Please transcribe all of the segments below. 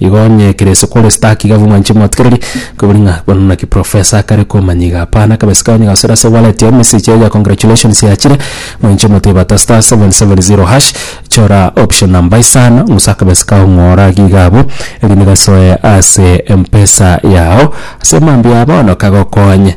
Igo onye ekero ase kore stark iga abwo mwanche motikereri kobori ng'a bono naki professor akare komanya iga hapana akabe ase kanya gasore ase wallet yaye message yaye ya congratulations yachire mwanche omotebe ata star seven seven zero hash chora option number isano bosa akabe ase kagokong'ora iga iga abwo erinde gasoe ase Mpesa yago ase mambia bono kagokonye.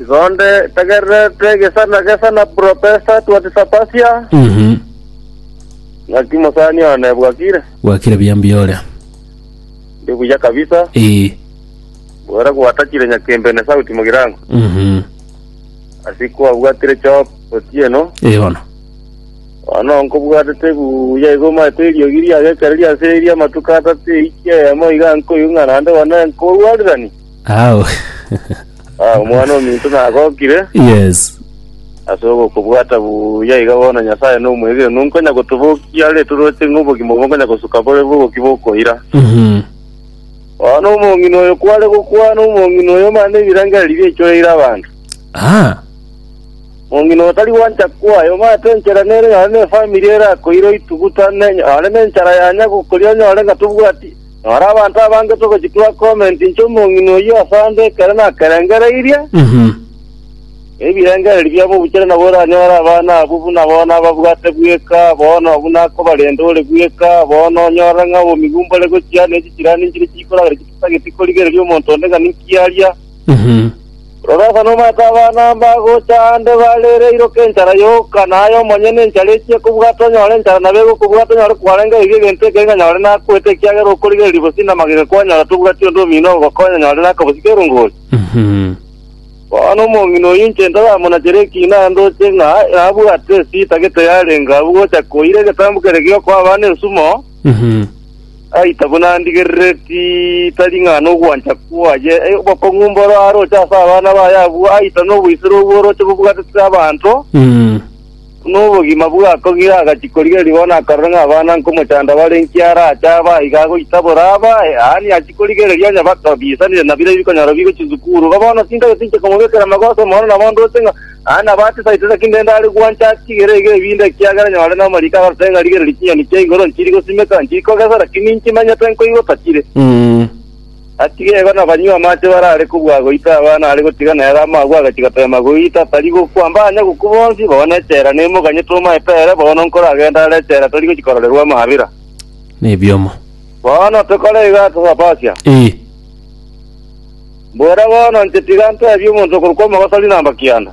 Igonde tagererete gesana gesana profesa twatisapasia Mhm. ng'aki mosani one bwakire Bwakire buya mbiore. ndi buya kabisa Eh. bwera gwatachire nyakembene sauti mogirango Mhm. asiku abwatire chop otieno Eh bono. ono nkobwatete buya igo maete eriogi riagekereria ase eria amatuko atatu eikia eyemo iga nkoigung'ana ande one nkobwarerani Ao. Ah, omwana ominto nagokire Yes. ase ogokobwata buya iga bono Nyasae nomwegenwa onkonya gotobokia are toroche ng'a obogima obo nkonya gosuka bore bogokia bokoira. Mhm. Bono omong'ina oyo kware gokwana omong'ina oyo mane ebirengererio biaichoreire abanto. Ah. Omong'ina oyo tari gwancha kwaya omanyete enchera nere nonye na efamiri erakoire oitugutane nonye na enchara yanya gokoria onyore ng'a tobwati Noro abanto abange togochia twa comment inche omong'ina oyio ase ande ekero nakerengereirie, na ebirengererio biabo obuchera nabo oranyore abana abwo buna bono ababwate bweka bono buna akobarenda ore bweka bono, onyorere ng'a obomi bwo mbore gochia, ne chichrani nchiria chikoragera chitageti korigereria omonto onde ng'a ninki aria. Rora, ase nomanyete abana mbagocha aande barere eiroka enchara yoka, na aye omonyene enchara echie kobwata onyore enchara na bego kobwata onyore kwarengeirie egento ekere ng'a nyore nakwete ekiagera okorigereria bosio namagega kwanyora tobwati onde omino ogokonya nyore nakabosie kerongori. Bono omong'ina oyio inche ntoramonachere ekiina ndoche ng'a nabwate esita getari arenga abwo gocha koira egetambu kere giokoa abana ensumo, Aita buna ndigerereti, tari ng'a nogwancha kwaye e, obokong'u mboro aroche ase abana baye abwo, aita noboisero obwo oroche bobwatetire abanto, buna obogima bwakogire agachi korigereria bono akarora ng'a abana nkomochanda bare inki arache abe aye iga agoita boraba aye, yaani achia korigereria onye bakabiisanire na bire bikonyora bigo chisukuru. Igo bono chingaki chinche komobekera magoso mono nabo ndoche ng'a Aya nabo atesaitera kindende are gwancha chigere iga ebinda ekiagera nyore namariiko agarute ng'a rigererie chinyoni chia igoro nchiri gosimeka, nchiri kogesera, ki ninki manyete nkoigwa tatire. Atige igo na banywe amache bare are kobua goita abana are gotiga nere amagwe agachi goteema goita tari gokwa mbanya gokwa bonsi bono echela nemo ganye tomaete ere bono nkore agende are echela tori gochi kororerwa amabera. Nebiomo. Bono tokore iga ase Sapasia. Ee. Mbwera bono inche tiga nteebie omonto okorokwa omogoso riina amba kianda.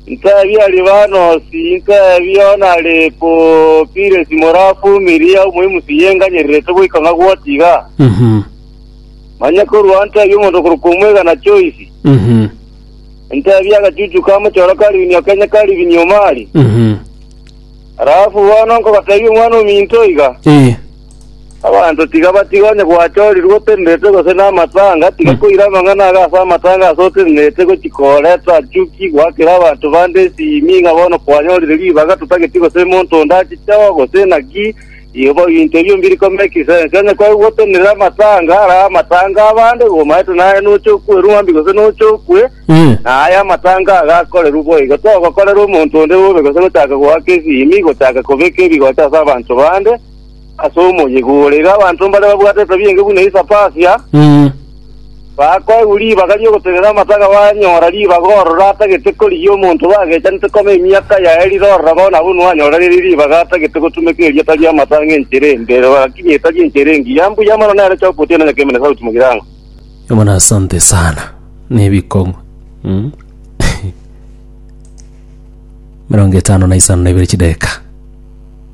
Nteebie Alibanosi, nteebie ona Alipokiresi more Afumiria, omoimusu yenganyerirete goika ng'a gwoti iga. Manye korwa ao nteebie omonto okorokwa omwega na Joisi. Nteebie agachuchu ka mochoro ka ribinywa kenye ka ribinywa omari. Halafu bono nkobateebia omwana ominto iga. Abanto tiga batige onye gwachorirwe otenenerete gose namataanga, tiga koira amang'ana aga ase amataanga ase otenenerete gochia kooreta achuki goakera abanto bande esimi ng'a bono kwanyorire ribaga totageti gose monto onde ache chao gose naki ibo binto ebio mbiri ko make sense. Onye kwa gotenerera amataanga ara amataanga abande igo omaete naye noche okwe ruambi gose noche okwe Eh. na aya amataanga aga akorerwe boigo togokorera omonto onde bobe gose gochaka goaka esimi gochaka kobeka ebigocha ase abanto bande ase omoyega ore. Iga abanto mbare babwate etabia enge buna Isapasia, Mm. bakoegwa ribaga ri'ogotenena amataga banyora ribaga ororo atagete korigia omonto bagechanete koma emiaka yaye rirorora bono abwo nwanyora riri ribaga atagete gotumeka eria tari amata ang'e enchera embe lakini etari enchera engiya mbuya mono nere choka otienana keme na sauti mogirango Bwana asante sana. Ne bikong'u. Mm. Mirongo etano na isano na ibere chideka.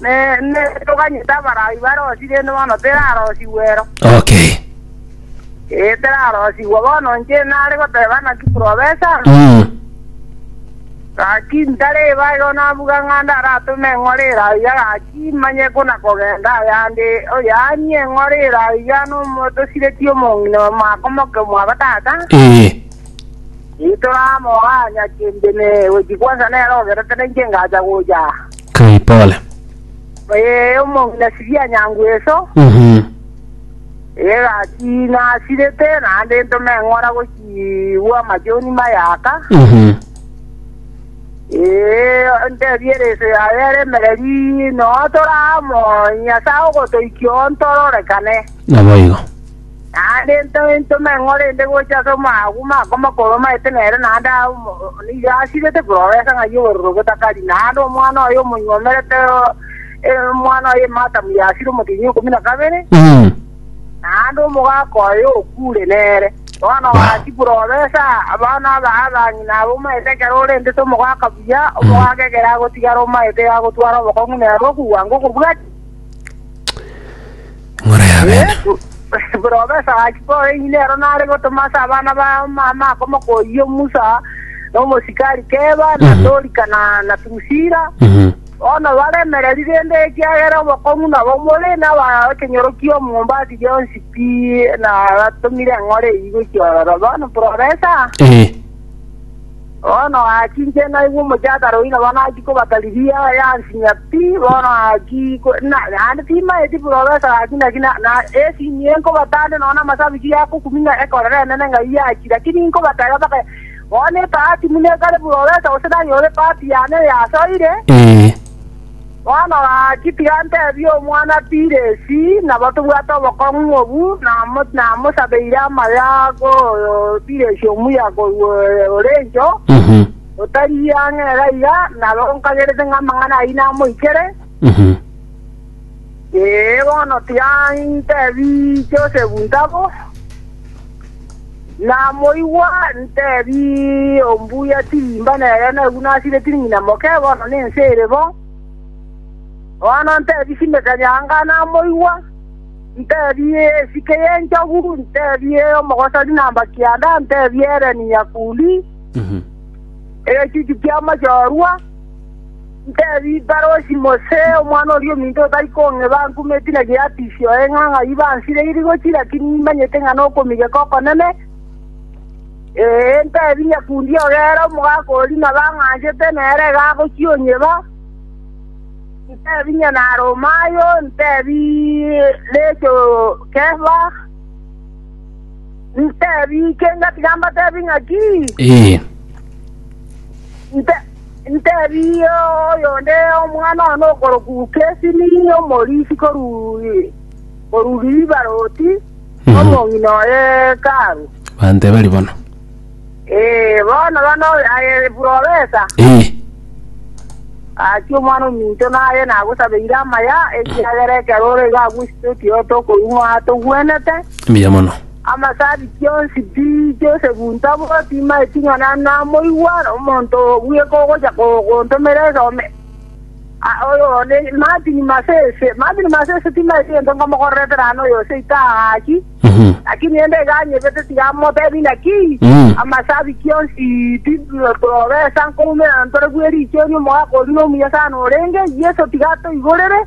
Neende toganyete abaraai barosie, rende bono terarosigwe ero. Okay. Ee, terarosigwa. Bono inche nare goteba naki profesa, Mm. gaki ntareba igo nabuga ng'a ndaratome eng'ore ere aiga gaki manye buna kogenda ayande oyanie eng'ore ere aiga nomotosiretie omong'ina mwakomoke mwabatata Ee. itoramoa nyakende ne gochi kwansa nere ogerete na inche ngacha gocha Kai pole. Ee, omong'ina siria nyangu eso, Mhm. ee gaki nasirete, naende ntome eng'ora gochigwa amachoni mayaka, Mhm. ee, ntebie ereso yaye ere emereri, noa tore amo, Nyasae ogotoikia ontorore kane. Naboigo. Naende into into meng'o rende gocha ase omogima oko mokoromete nere naende nigo asirete kororesa ng'ai obororo botakari, naende omwana oye omonywomerete omwana oye Matamu yasire omotienyi ikomi na kabere, naende omogaka oye okure nere. Bono gaki kororesa abana aba abang'ina aba omaete ekero orentete omogaka buya, omogaka ekero agotigara omaete iga agotware obokong'u nere okogwango okobwate. Ng'ora ya bene. Yesu buna obesa gaki kore ng'ina ero nare gotoma ase abana ba mama akomokoyio Musa na omosikari Keba na Mhm. Dorika na na Drusila Mhm. bono baremereri rende ekiagera obokong'u nabo more na aba ekenyorokia omombati rionsi pi na batomire eng'ora eyio gochia ororo bono buna obesa Eh. Bono aachinchire naigwe omochakare oyio nabo nachia koba Galilia yansinyia pi, bono achia ko, na, naende timaeti profesa gaki naki, na, na esinyia enkobatande nonya namasabichi yakokumia ekorere enene ng'ai yachia, lakini inkobateba mpaka bono ebahati buna ekare profesa, gose nanyore ebahati yane eyasoire. Ee. Bono gaki, tiga ntebie omwana Piresi, nabo tobwate obokong'u obu, namosabeire amayo akoyo Piresi omuya korwa ore encho, otari ang'e iga iga, naro nkagerete ng'a amang'ana ayio namoikere. Ee, bono tiga ntebie Josefu ntabo. Namoigwa ntebia ombuya tirimba nere naigwa nasireti ng'ina moke bono nense ere bo. Bono ntebia simeka nyanga namoigwa, ntebia esike y'enchogu, ntebia omogosori namba kianda, ntebia ereni nyakuli, egechuchu ki'amachorwa. Ntebie Iparosi Mose, omwana oria ominto otari kong'eba, ankume etina gie Apisi oye ng'a ng'ai bansire irigo ki, lakini nimanyete ng'a nokomigeka okonene. Ee, ntebie nyakundi oyo ere omogaka oria nabo ang'anchete, nere iga agochia onyeba. Ntebie Nyanaaromayo, ntebie Lejo Kefa, ntebie Kengati gambatebie ng'aki? Ee. Ntebie oyonde omwana one okorokwa Kesimi, omorisi korwa Bibaroti, omong'ina o Hekalu. Bante bari bono. Ee, bono bana oyo aye eprofesa, Ee, gachia omwana ominto naye nagosabeire amaya, ekiagera ekero ore iga agwesete otioto okorwa ng'a togwenete. mbuya mono. Amasabiti onsi tiicha ase gunta bo, timaeti ng'a namoigwa omonto bweka ogocha gontomera esome. Martin Masese, Martin Masese timaeti gento nkamokorerete rane oyo seito agaki, lakini rende iga anyebete tiga motebi naki, Amasabiti onsi titobesa nkoumera ntore bwe richieni, omogaka oria nomuya sana orenge, Yeso tiga atoigorere.